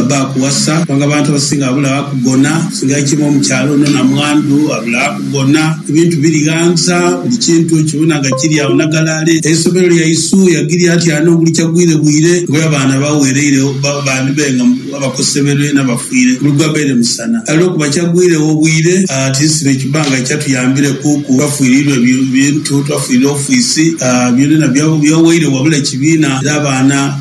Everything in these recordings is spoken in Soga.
Baba akuwasa kubanga abantu abasinga abula wakugona singa aityaime omukyalo ono namwandu abula wakugona ebintu biri ghanza buli kintu okibona nga kiri agho nagalale eisomero lyaisu yagirya atya ano buli kyagwire bwire kuba abaana bawereiregho bandi baire nga abakoseberwe nabafiire buli gwabaire musana kale olwokuba kyagwiregho bwire tinsibe kibanga kyatuyambireku ku twafirirwa ebintu twafirirwa ofiisi byonabyona byawaire wabula kibiina era abaana.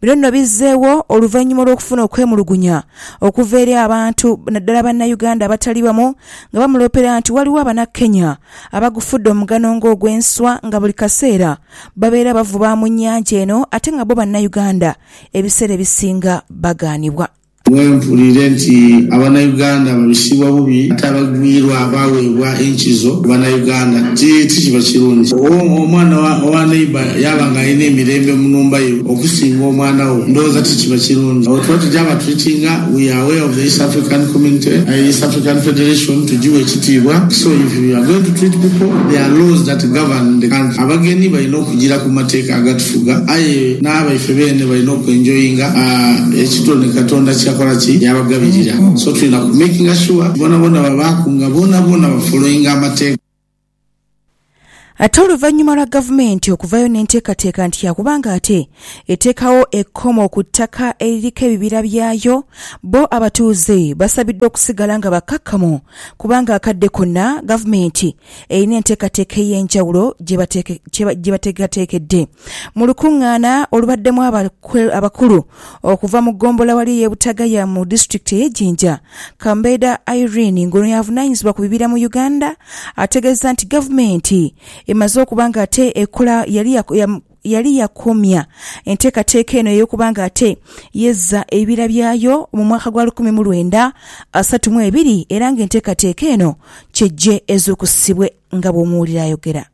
Bino nno bizzeewo oluvannyuma olw'okufuna okwemulugunya okuva eri abantu naddala Bannayuganda abatali bamu nga bamuloopera nti waliwo Abannakenya abagufudde omugano ng'ogw'enswa nga buli kaseera babeera bavuba mu nnyanja eno ate nga bo Bannayuganda ebiseera ebisinga bagaanibwa Bwe mpulire nti abanauganda babisibwa bubi ate abagwirwa baweebwa enkizo ku banauganda ti tikiba kirungi. Owo omwana owa neighbour yaaba nga alina emirembe mu nhumba ye okusinga omwana wo ndowooza ti kiba kirungi. Awo tuba tugya ba treatinga we are aware of the East African community, East African Federation tugiwe ekitiibwa so if we are going to treat people there are laws that govern the country. Abagenyi balina okugira ku mateeka agatuyamba. Tuga, aye n'abaife beene balina oku enjoyinga ekitone Katonda kyeyakola ki yabagabirira. So tulina ku makinga sure nti bonaboona babaaku nga bonaboona ba followinga amateeka. Ate oluvannyuma lwa gavumenti okuvaayo n'enteekateeka nti yaakuba ng'ate eteekawo ekkomo ku ttaka eririko ebibira byayo, bbo abatuuze basabiddwa okusigala nga bakkakkamu kubanga akadde konna gavumenti erina enteekateeka ey'enjawulo gye bateekateekedde mu lukungaana olubaddemu abakulu okuva mu ggombolola wali ey'e Butagaya mu disitulikiti ey'e Jinja. Kambeeda Irene ng'ono y'avunaanyizibwa ku bibira mu Uganda ategeezezza nti gavumenti emaze okuba ng'ate ekola yali yali yakomya enteekateeka eno ey'okuba nga ate yezza ebibira byayo mu mwaka gwa lukumi mu lwenda asatu mu ebiri era nga enteekateeka eno kyejje ezuukusibwe nga bw'omuwulira ayogera.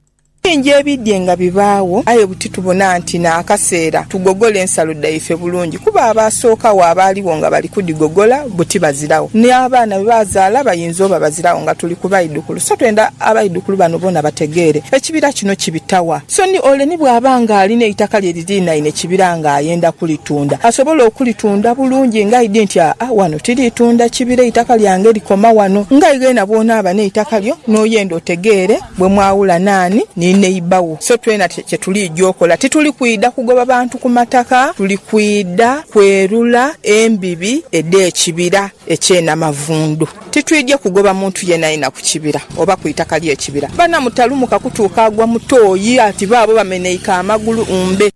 Bingi ebidhye nga bibaagho aye titubona nti n'akaseera tugogole ensalo dhaife bulungi kuba abaasookagho abaaligho nga bali kudhigogola buti baziragho. N'abaana be baazaala bayinza oba baziragho nga tuli ku baidhukulu. So twenda abaidhukulu bano boona bategeere ekibira kino kibita wa. So ni ole ni bw'aba ng'ali n'eitaka lye liriinaine kibira ng'ayenda kulitunda, asobola okulitunda bulungi ng'aidhi nti, Aa, ghano tiriitunda kibira, eitaka lyange likoma ghano. Ng'aye ghena bw'onaaba n'eitaka lyo, n'oyenda otegeere bwe mwawula naani ni neiba wo. So twena kye tuliidha okola, tituli kwidha kugoba bantu ku mataka, tuli kwidha kwerula embibi edh'ekibira eky'e Namavundu. Titwidhie kugoba muntu yeenayeena ku kibira oba ku itaka ly'ekibira. Bana mutalumuka kutuuka agwa mu toyi, ati baabo bameneike amagulu mbe.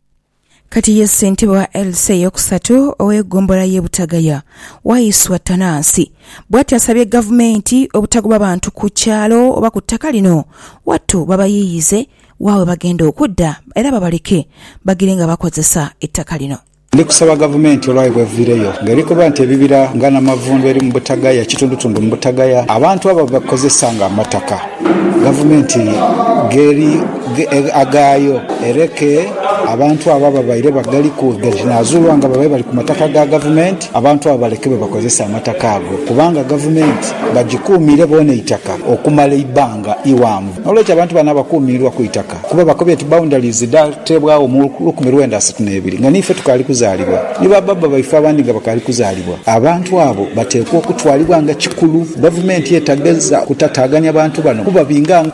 Kati ye ssentebe wa LC ey'okusatu ow'eggombolola y'e Butagaya, Waiswa Tanansi bwatyo asabye Gavumenti obutagoba bantu ku kyalo oba ku ttaka lino wattu babayiiyize wa webagenda okudda era babaleke bagire nga bakozesa ettaka lino. Ndi kusaba Gavumenti olwayo bw'eviireyo nga eri koba nti ebibira nga Namavundu eri mu Butagaya, kitundutundu mu Butagaya, abantu abo babikozesa nga amataka, Gavumenti gh'eri aghaayo ereke abantu abo ababaire bagaliku nga kinaazuulwa nga babaire bali ku mataka ga Gavumenti, abantu abo balekebwe bakozese amataka ago kubanga Gavumenti bagikuumiire boona eitaka okumala eibbanga ighanvu. N'olwekyo abantu bano abakuumiirwa ku itaka. Kuba bakobye nti boundaries dhaateebwagho mu lukumi lwenda asatu n'ebiri nga n'ife tukaali kuzaalibwa, ni ba baaba baife abandi nga bakaali kuzaalibwa. Abantu abo bateekwa okutwalibwa nga kikulu. Gavumenti etagheza kutataaganya bantu bano kuba binga.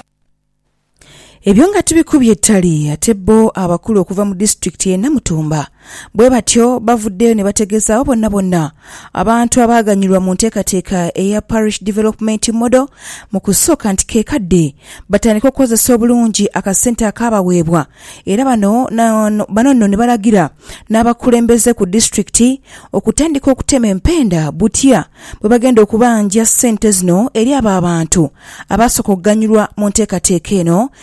Ebyo nga tibikubye ttali ate bbo abakulu okuva mu disitulikiti y'e Namutumba Bwe batyo bavuddeyo ne bategeezaawo bonnabonna abantu abaaganyulwa mu nteekateeka eya Parish Development Model mu kusooka nti ke kadde batandike okukozesa obulungi akasente akaabaweebwa era bano bano nno ne balagira n'abakulembeze ku disitulikiti okutandika okutema empenda butya bwe bagenda okubanja ssente zino eri abo abantu abaasooka okuganyulwa mu nteekateeka eno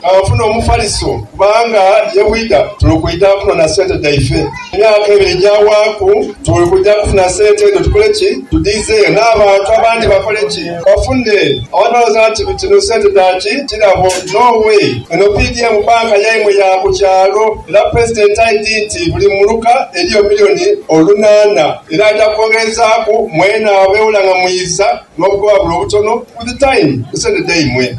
Kanfune Omufaliso kubanga ye bwidha tuli kwidha kunona sente dhaife. Emyaka ebiri egyawaaku tuli kwidha kufuna sente edho tukole ki? Tudhiize n'abantu abandi bakole ki? Bafune. Abantu balowooza nti dhino sente dha ki kirabo. No way! Eno PDM bbanka yaimwe ya ku kyalo era Pulezidenti aidhi nti buli muluka eriyo milioni olunaana era aja kwongerezaaku mwena abeewula nga mwiiza n'obugobabula obutono with time ku sente dhaimwe.